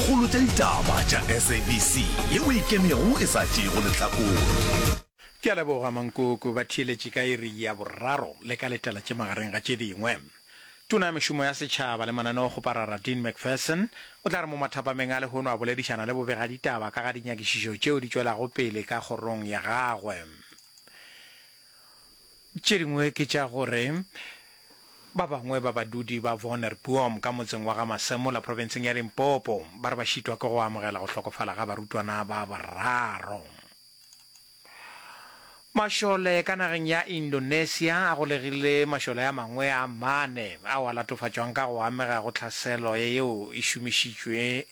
Kgolo tša ditaba tša SABC ye o e kemego e sa tšeego lehlakore. Ke a leboga Mankoko ba theeletše ka iri ya boraro le ka letela tše magareng ga tše dingwe. Tona ya Mešomo ya Setšhaba le Mananeokgoparara Dean McPherson o tla re mo mathapameng a lehono a boledišana le bobegaditaba ka ga dinyakišišo tšeo di tšwelago pele ka kgorong ya gagwe. Tše dingwe ke tša gore ba bangwe ba badudi ba Wonnerbom ka motseng wa ga Masemola profenseng ya Limpopo ba re ba šitwa ke go amogela go hlokofala ga barutwana ba bararo. Mašole ka nageng ya Indonesia a golegile mašole a mangwe a mane ao a latofatšwang ka go amega go tlhaselo yeo e šomišitšwe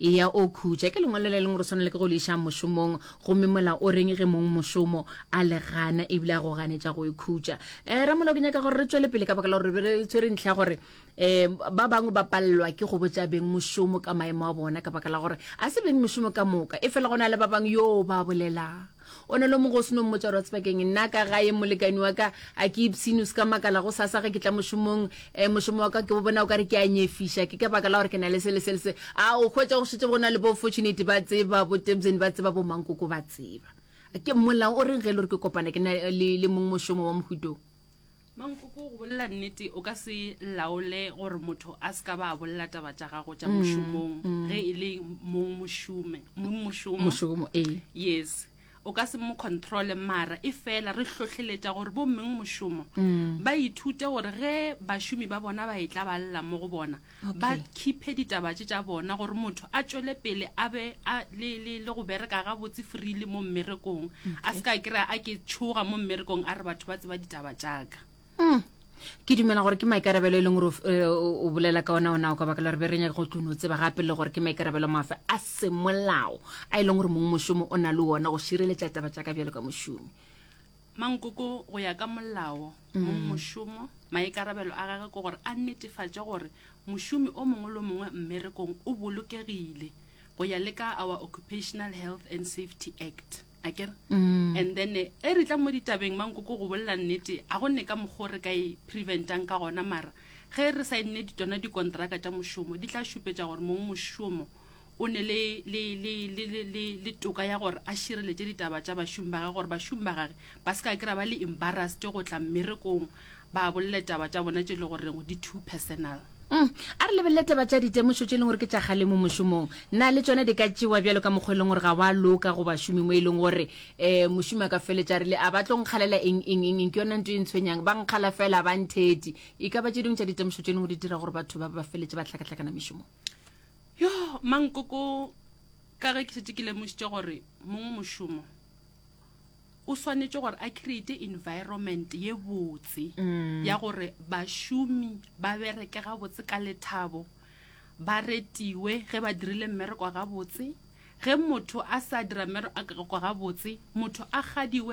Eya o khutša. Ke lengwalo le leng gore swana le ke go le iša mošomong, gomme mola o reng ge mong mošomo a le gana ebile a go ganetša go e khutša? Um ramolao ke nyaka gore re tšwele pele ka baka la gore re be re tshwere ntlha ya gore um ba bangwe ba palelwa ke go botša beng mošomo ka maemo a bona ka baka la gore a se beng mošomo ka moka, efela go na le ba bangwe yoo ba bolela. o ne lo mongwe o seno mmotsa gore wa tseba keng nna ka gae molekani wa ka a ke ipshine o se ka makala go sasa ge ke tla mošomong um mošomo wa ka ke bo bona o ka re ke a nyefiša ke ka baka la gore ke na le se le se le se a o hwetsa go šetse go na le bo fortunate ba tseba bo tebseni ba tseba bo mankoko ba tseba ke molao o reng ge e le gore ke kopana ke na le mongwe mošomo wa mohutong Mankoko, go bolela nnete o ka se laole gore motho a se ka ba a bolela taba tša gago tša mm, mošomong mm. ge e le mong mošome mošomo yes o ka se mo controle mara e fela re hlohleletša gore bommeng mošomo mm. ba ithute gore ge bašomi ba bona ba e tla ba lela mo go bona ba khiphe ditaba tše tša bona gore motho a tšwele pele a be a le le le go bereka ga botse freely mo mmerekong a se ka kry-a a ke tshoga mo mmerekong a re batho ba tseba ditaba tšaka Mm. ke dumela gore ke maikarabelo e leng gore o f- eh, o o bolela ka ona ona o ka baka la gore be re nyake go tlono tseba gape le gore ke maikarabelo mafe a semolao a e leng gore mongwe mošomo o na le ona go šireletša taba tša ka bjalo ka mošomi Mankoko go ya ka molao mong mm. mošomo maikarabelo a gage ke gore a netefatše gore mošomi o mongwe le mongwe mmerekong o bolokegile go ya le ka our occupational health and safety act a kere mm. and then e re tla mo ditabeng mankoko go bolela nnete a go ne ka mokgwa re ka e preventang ka gona mara ge re sa e nne ditona dikontraka tša mošomo di tla šupetša gore mongwe mošomo o ne le, le, le, le, le, le, le toka ya gore a šireletše ditaba tša bašomi ba gage gore bašomi ba gage ba se ka kira ba le embarrassed go tla mmerekong ba bolele taba tša bona tše le goreng di too personal. Mm. A re lebelele taba tša ditemošo tše e leng gore ke tša galemo mošomong. Na le tšona di ka tšewa bjalo ka mokgwa e leng gore ga wa loka go bašomi mo e leng gore um mošomi a ka feletša rile a ba tlo nkgalela eng eng eng eng ke yona nto e ntshwenyang ba nkgala fela ba ntheti e ka ba tše dingwe tša ditemošo tše e leng gore di dira gore batho ba ba feletše ba hlakahlakana mešomong Yoh, mankoko, ka ge ke šetše ke lemošitše gore mongwe mošomo o swanetše gore a create environment ye botse mm. ya gore bašomi ba bereke gabotse ka lethabo ba retiwe ge ba dirile mmereko gabotse ge motho a sa dira mmereko gabotse motho a gadiwe